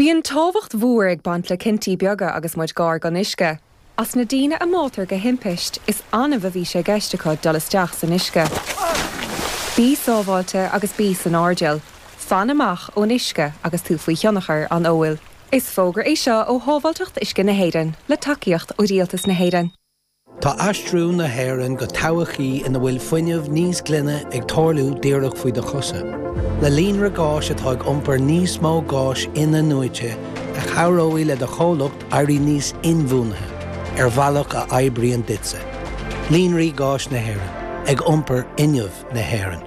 Bíonn tábhacht mhór ag baint le cinntí beaga agus muid gar don uisce. As na daoine a mbáitear de thimpiste, is annamh a bhí sé i gceist acu dul isteach san uisce. Bí sábháilte agus bí san airdeall. Fan amach ón uisce agus tú faoi thionchar an óil. Is fógra é seo ó Shábháilteacht Uisce na hÉireann, le tacaíocht ó Rialtas na hÉireann. Tá aistriú na hÉireann go todhchaí ina bhfuil fuinneamh níos glaine ag tarlú díreach faoi do chosa. Le líonra gáis atá ag iompar níos mó gáis in-athnuaite a chabhróidh le do chomhlacht éirí níos inbhuanaithe ar bhealach a oibríonn duitse. Líonraí Gáis na hÉireann, ag iompar fhuinneamh na hÉireann.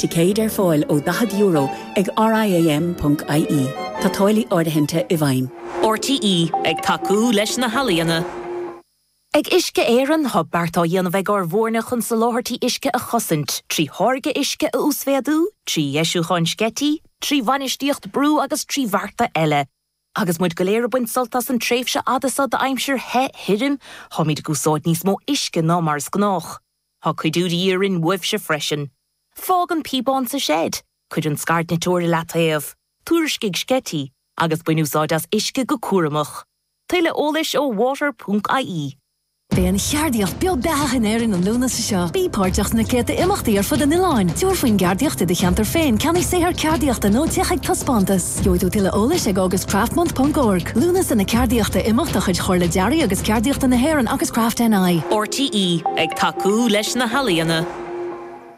Ticéid ar fáil ó €40 ag RIAM.ie. Tá táillí áirithinte i bhfeidhm. RTÉ ag tacú leis na healaíona. Ag Uisce Éireann tá beart á dhéanamh ag ár bhfoirne chun soláthairtí uisce a chosaint, trí tháirgeadh uisce a uasmhéadú, trí dheisiúcháin sceití, trí bhainistíocht brú agus trí bhearta eile. Agus muid go léir ag baint sult as an tréimhse fhada seo d'aimsir the, thirim, táimid ag úsáid níos mó uisce ná mar is gnách. Tá cuidiú de dhíth orainn uaibhse freisin. Fág an píobán sa seid, cuir an scairdniteoir i leataobh, tuairiscigh sceití, agus bain úsáid as uisce go cúramach. Tuilleadh eolais ó water ponc ie. Beidh an cheardaíocht beo beathach in Éirinn an Lúnasa seo. Bí páirteach sna céadta imeachtaí ar fud an oileáin. Tabhair faoin gceardaíocht i do cheantar féin, ceannaigh saothar ceardaíochta nó téigh chuig taispeántas. Gheobhaidh tú tuilleadh eolais ag augustcraftmonth.org, Lúnasa na Ceardaíochta, imeacht de chuid Chomhairle Dearaidh agus Ceardaíochta na hÉireann agus Craft NI. RTÉ ag tacú leis na healaíona.